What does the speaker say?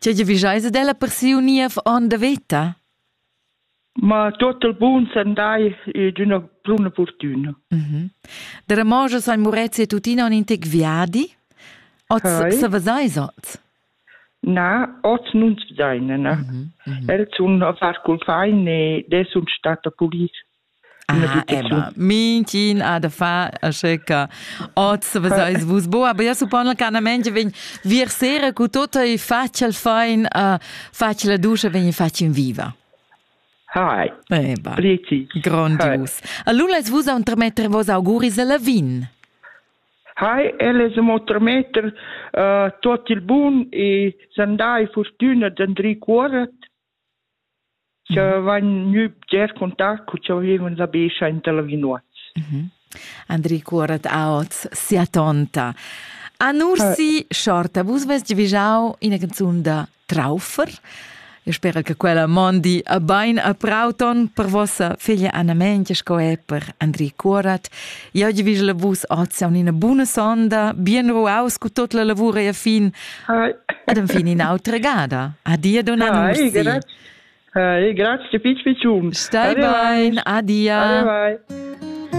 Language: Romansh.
Tgei giavischeis ad ella per siu niev onn da veta? Ma tot il bun sandai e d'üna bruna fortüna. Mhm. Da Ramoschas ein Murezi e tuttina in intec viadi. Oz Hei. sa veseis oz. Na, oz nun se seine, ne? Mhm, mhm. Els sun a far cul fain e des sun stat a pulis. Ah, eba, minchin ha da far asche che oz veseis vus bu, aber io suppon canamente vegn vir sera cu tutto e faccia il fein, uh, faccia la duscha, vegn faccia in viva. Hi. Eba. Plici. Grondius. Allora vus a un tremetre vos auguris alla vin. Hi, elle se mo tremeter uh, tot il bun e sandai fortuna d'Andri Cuorat Cha vain gnü bgers contacts cu cha vivin la Bescha inter Lavinuoz. Andri cuorret aot sia tonta. A Nursi Schorta, vus vest giavüschau ina canzun da Traufer. Io spera che quella mondi a bain a prau ton per vossa figlia Anna Mengia sco er per Andri Cuorat. Ja gi vis la vus az an ina buna sonda, bien ruaus cu tot la lavura e fin. Ed en fin ina autra gada. Adia donna Nusti. Hey, grazie, pic, picum. Stai bain, adia. Bye, bye.